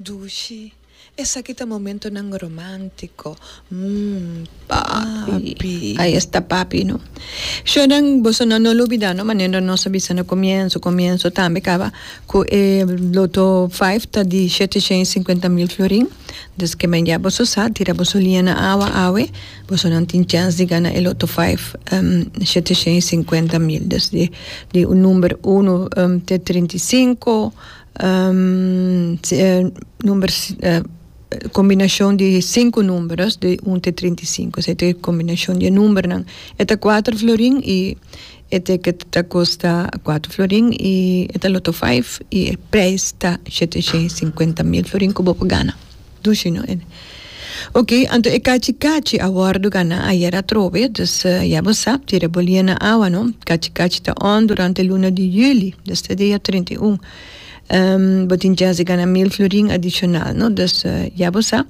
Dushi, Esaki ta momentonan romántico, mm, papi. Ahí está papi, no. Shornan, boso no lo olbida, no, manera nos a bisa na comienzo, comienzo tambe caba cu e loto vijf ta di shete shen y cincuenta mil florin, dus ke men ya boso sa, tira boso liña na awa awe, boso nan tin chèns di gana e loto vijf, shete shen y cincuenta mil, desde di un number uno te trinta y cinco. kombinashon di sinku numberos di un te trinta i sinku esei ta e kombinashon di e numbernan e ta kuater florin i e tiket ta kosta kuater florin i e ta loto faif i e preis ta shete shei i sinkuenta mil florin ku bo por gana. Dushi no ene. Ok, anto e kachi kachi a wòrdu ganá ayer atrobe, dus ya bo sa, tira bo lia na awa no. Kachi kachi ta on durante luna di juli, desde dia trinta i un. Bo tin chans di ganá mil florin adishonal no, dus ya bo sa.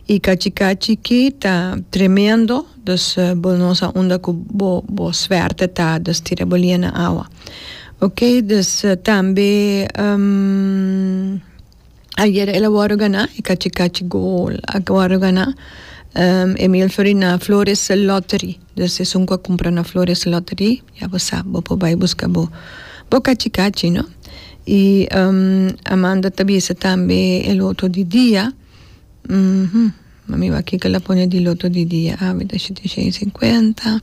I kachi kachi ki ta tremendo, dus bo no sa unda ku bo bo swèrt ta, dus tira bo lia na awa. Ok, dus tambe. Ayer el a wòrdu ganá e kachi kachi gol a wòrdu ganá um Emil Florin na Flores Lottery. Dus esun ku a kumpra na Flores Lottery ya bo sab bo por bai buska bo bo kachi kachi no. I um Amanda ta bisa tambe el otro di dia. Ma mi wak kiko la pone di loto di dia a mi ta shit tin shen i sinkuenta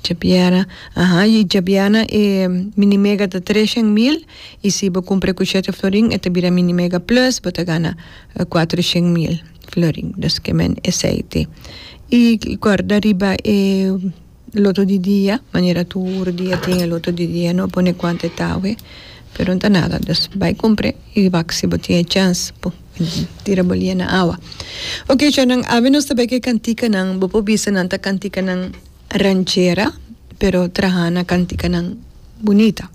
chapiera aha i chapiana e mini mega ta tres shen mil i si bo kumpra ku shete florin e ta bira mini mega plus bo ta gana kuatro shen mil florin dus ke men esei te i kòrda riba e. Loto di dia manera tur dia tin e loto di dia no pone cuanto e ta awe pero no ta nada pues bay compre y wak si bo tin e chance bo tira bo lia na awa ok chonan awe nos ta bay ke cantikanan bo por bisa nan ta cantikanan ranchera pero traha na cantikanan bunita.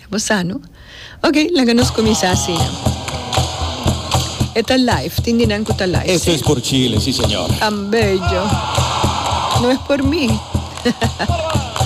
Ya bo sa no? Ok, laga nos kuminsá asina. E ta live, tin di nan ku ta live, Eso si? es por Chile, si señor. Tan bello. No es por mi.